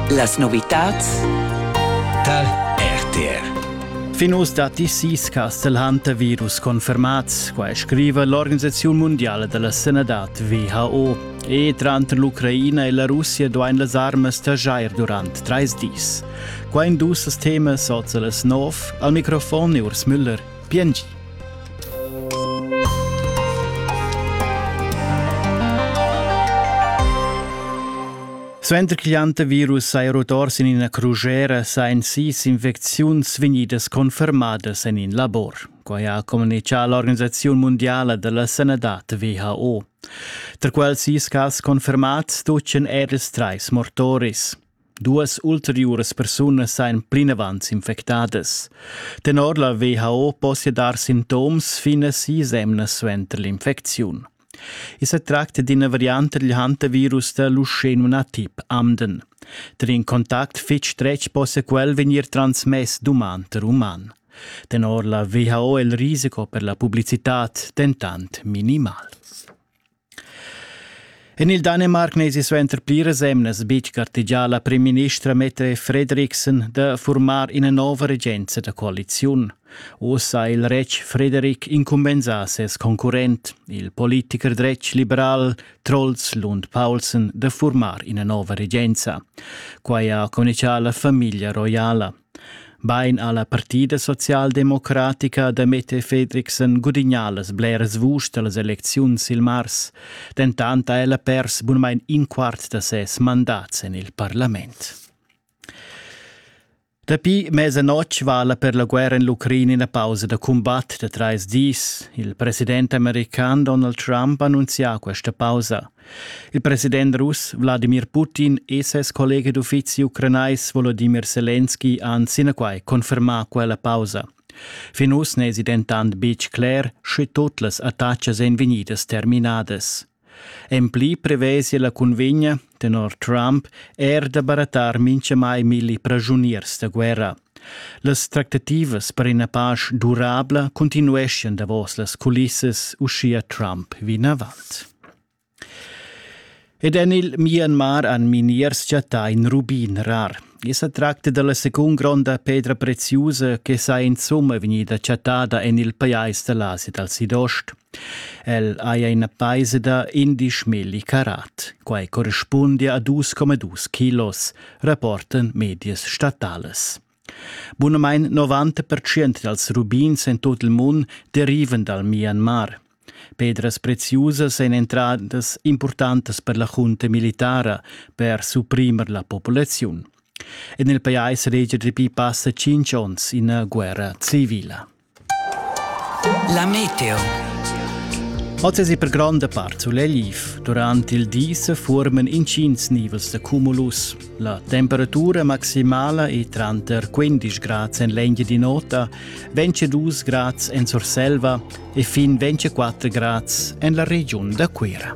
Las novitads tar RTR Fin uss datti sis Castel Hunter virus confermats, quai scriva l'Organisaziun mundiala da la sanadad WHO. E tranter l'Ucraina e la Russia duain las armas taxair durant trais dis. Qua in dus temas oza las nov. Al microfon è Urs Müller. Biengi. Suenter ch'igl antivirus saja rotor sin ina crugera sajan sis infecziuns vegnidas confermadas en in labor. Quai ha communitgà l'Organisaziun mundiala della sanadad WHO. Tra quels sis cas confermats tutgan er ils trais mortoris. Duas ulteriuras persunas sajan plinavant s'infectadas. Tenor la WHO possia dar sintoms fin a sis emnas suenter l'infecziun. I sa tracta d'ina variante dil hantavirus da Lucenuna tip Amden. Tar in contact fitg stretg possa quel vegnir transmess d'uman tar uman. Tenor la WHO è il risiko per la publicitad dentant minimal. En il Danemarc n'esi suenter pliras emnas betg gartegià la primministra Mette Frederiksen da furmar ina nova regenza da coaliziun. Uss ha il retg Frederik incumbensà ses concurrent, il politicher dretg liberal Troels Lund Paulsen, da furmar ina nova regenza. Quai ha communicà la famiglia roiala. Bein ha la partida socialdemocratica da Mette Fredriksen gudignà las bleras vuschs da las elecziuns il mars, dentant ha ella pers bunmain in quart da ses mandats en il parlament. Dapi mesanotg vala per la guerra en l'Ucraina ina pausa da cumbat da trais dis. Il president american Donald Trump ha annunzià questa pausa. Il president russ Wladimir Putin e ses collega d'uffizi ucranais Volodimir Selenski han sinaquai confermà quella pausa. Fin uss n'èsi dentant betg cler, sche tut las attacas èn vegnidas terminadas. En pli prevesi la cunvegna, tenor Trump, er da barattar mintgamai milli praschuniers da guerra. Las tractativas per ina pasch durabla continueschan davos las culissas uschia Trump vinavant. Ed en il Myanmar han miniers chattà in rubin rar. I sa tracta dalla secund gronda pedra preziusa che sa insumma vegnida chattada en il pajais da l'Asia dal Sidost. El haja ina paisa da indisch milli carat. Quai correspundia a 2,2 kilos, rapportan medias statalas. Bunamain 90% dals rubins en tot il mund derivan dal Myanmar. Pedras preziusas èn entradas impurtantas per la junta militara per supprimer la populaziun. En il pajais regia dapi passa tschintg onns ina guerra civila. La meteo. Oz es per gronda part sulegl Durant il di se forman intgins nivels de cumulus. La temperatura maximala è tranter 15 grad en l'enghe di nota, 22 grad en Surselva e fin 24 grad en la region da Cuira.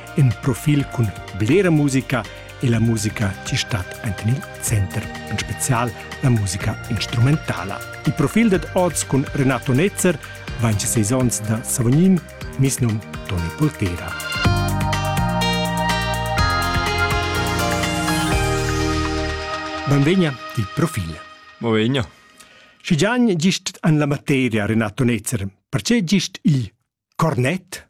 in profil cun blera musica e la musica ti stat enten il center, en spezial la musica instrumentala. Il profil dad oz cun Renato Netzer vain seis ons da Savognin, mis num Toni Poltera. Benvegna til profil. Benvegna. Schi gian gist an la materia, Renato Netzer, perché gist il cornet?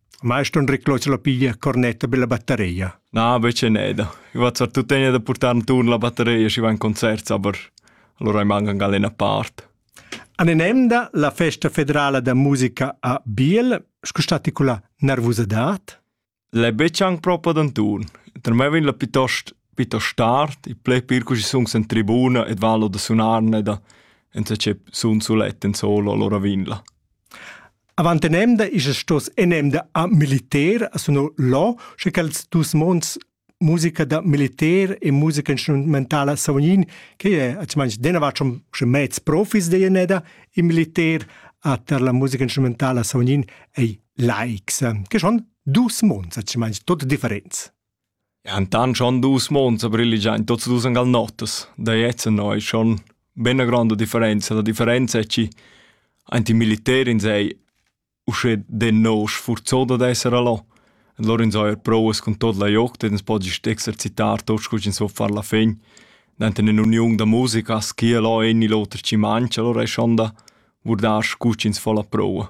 Maestron reclos la piglia cornetta per la batteria. Na, invece neda. Ich war zwar tuttegna da portar turn la batteria, ich war in Konzert, aber allora mancan anche eine Part. An enemda la festa federala da musica a Biel, scustati con la nervosidad? Le becciang proprio d'un turn. Per me vin la piuttost piuttost tard, i ple pir così sun in tribuna ed valo da sunarne da, enza ce sun sulet in solo, allora vin la. Avant enemda isas stos enemda a militer a suno lo, sche quels dus monds musica da militer e musica instrumentala savognin che è atschmans denavart schon schon mez profis de eneda in militer a ter la musica instrumentala savognin ei laics che schon dus monds atschmans tot differents. Entant schon dus mons a briligiain tuots dus ün gal notas. Da jetzt ennà es schon be 'na gronda differenza. La differenza es chi aint il militer ins ei uschè denò sfurzà dad esser là. E lur ins haja prouas cun tuot la jogt ed ins po gist exercitar tuot scu ch'ins vo far la fin. Denter ün'uniun da musica as schia là in il oter chi mancha, alura es schon da vurdar scu ch'ins fo la proua.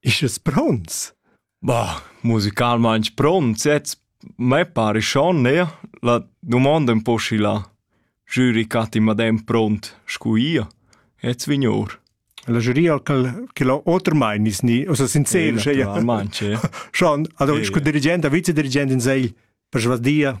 Ist es pronts? Bah, musicalmaing pronts jetzt. Me pare schon, ne? La domanda un po' schi là. Jury catti madem pront, scu ia. Jetzt vignor. La jury al qual che lo oter mein is ni, o so sincer, sche ja. Eventualmente, ja. Schon, also ich con dirigent, vice dirigent in sei per svasdia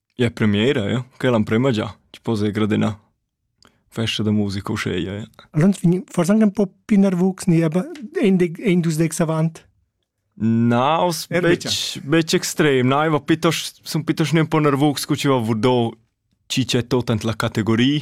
Ja premiera ja, quella l'emprema già, ti po se gradenà. Festa da musica uscheia, ja. Allora vegn forse anche un po' più nervus, ne, aber ein dus dex avant. Na, aus betg extrem, na, aber piuttosto, sono piuttosto un po' nervus, che ci va vurdò ci c'è tutta la categoria,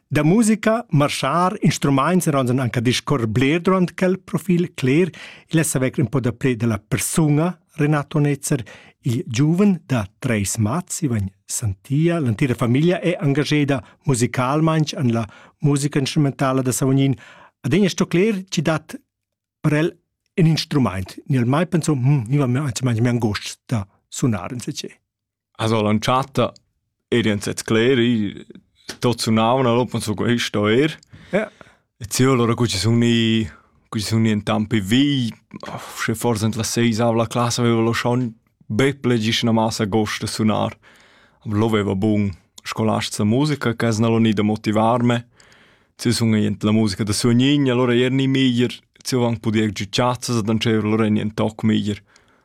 Da musica, marschar, instrumaints eran anche a discorrer bler durant quel profil cler, il è saver un po da pre della persona Renato Netzer, il giuven da Treis Mats, Ivan Santia. L'antira famiglia è engageda musicalmain an la musica instrumentala da Savognin. Adegna sto cler, ci dat per el un instrument. Nel mai penso, hm, niva mi anzi mai mi angost da sunar in se As ho lantschata ed ün s'het scleri, tot sunavan, allora pan sun quist o eir. Ja. E sì, allora cu ci sun i cu ci sun i intampi vi, schi forsa int las seis avo la classa aveva lo schon be ple gist 'na massa gost da sunar. Aber lo vaiva bun scolast sa musica, che as n'al ho gnü da motivarme. Ci sun i int la musica da suognign, allora eir gnì miglier, ci ho anc pudì giü chatsas ad antscheva, allora gnü ün toc miglier.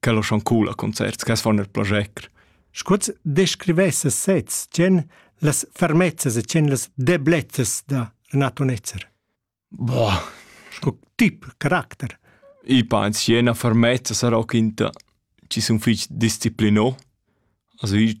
quel schon cool a concerts, che fan il plager. Scuoz descrivesse sez, tien las fermezzas e tien las deblezzas da Renato Netzer. Boah. Sco tip, caratter. I pa in siena fermezza sarà quinta. Ci sun fich disciplinò. Also ich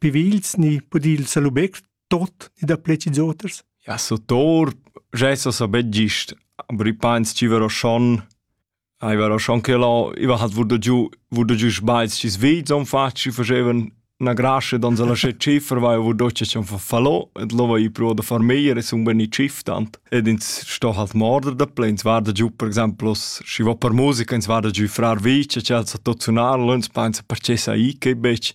Pivils ni pudil salubeg tot ni da pleci zoters? Ja, so tor, geso so bett gist, aber i pains ci vero schon, ai vero schon che lo, i va hat wurde giù, wurde giù sbaiz ci svit, son fat, ci facevan na grasce dan se lasce ciffer, vai wurde ci schon fallo, et lo va i pro da far meier e sun ben i ciftant, ed ins sto halt morder da ple, ins varda giù per esempio, si va per musica, ins varda giù frar vice, c'è so tot sunar, lo ins pensa perché sa i che bec,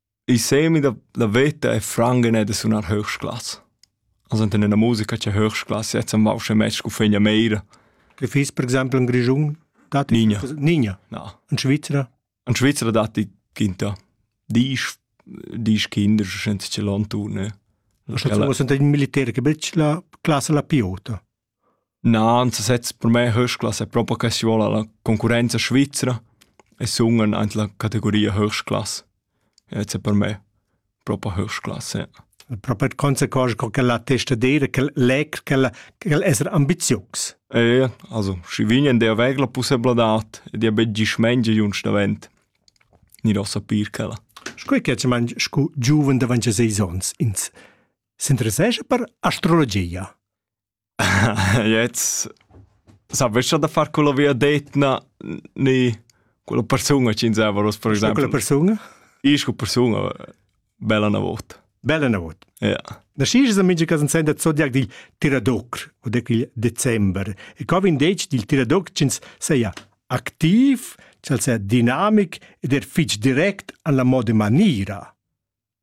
I semi da la veta è franc e da sunar höchstklass. Also in einer Musica c'è höchstklasse, jetzt am Wausche Match con Fegna Meira. Che fiss per esempio in Grigiun? Dati Nigna. Nigna. No. In Svizzera? In Svizzera dati Kinta. Dies dies Kinder senza ce l'on tu, ne? Also, was sind die Militäre, che bella classe la piota? Na, ansasezs per me höchsklasse è propa que chi voul la concurrenza svizra e sun aint la categoria höchstklasse. E ez è per me propa höchstklasse, ja. Propa d' consequenza co ch'el ha testa d'eira ch'el leg ch'el ch'el es ambizius. E ja, also schi vign ed eir vegl la pussebladad ed eir be gist mengia jünsch davent. Gnir a sapir ch'ella. Scu che manch scu giuven davant seis ons ins s'interessescha per astrologia? Jetzt sapescha da far quella viadetna ni quella persuna ch'insava oz per exempel. Quella persuna? Isch quella persuna bella na vot. Bella na vot. Ja. Na schi's amici cas in senda zodiac dil Tiradoc o de quil december. E co vin detg dil Tiradoc ch'ins seia activ, ch'al sea dinamic ed er fitg direct an la moda manira.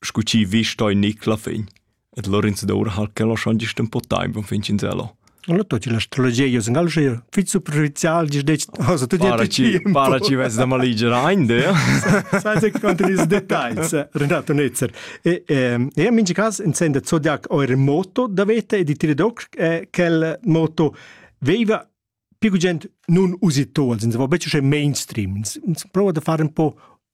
scu chi vi stoi Nicla fin, et Lorenzo d'Ora hal che lo schon gist un po time von fin Cinzello. Allora tu ci l'astrologia io sen alger fit superficial gis dec cosa tu para ci para ci ves da maligera ein de sai se contra ils dettagls Renato Netzer e e in ci cas intende zodiac o remoto da vete e di tiridox quel moto veiva più gent nun usi to als in se va becce mainstream prova da fare un po'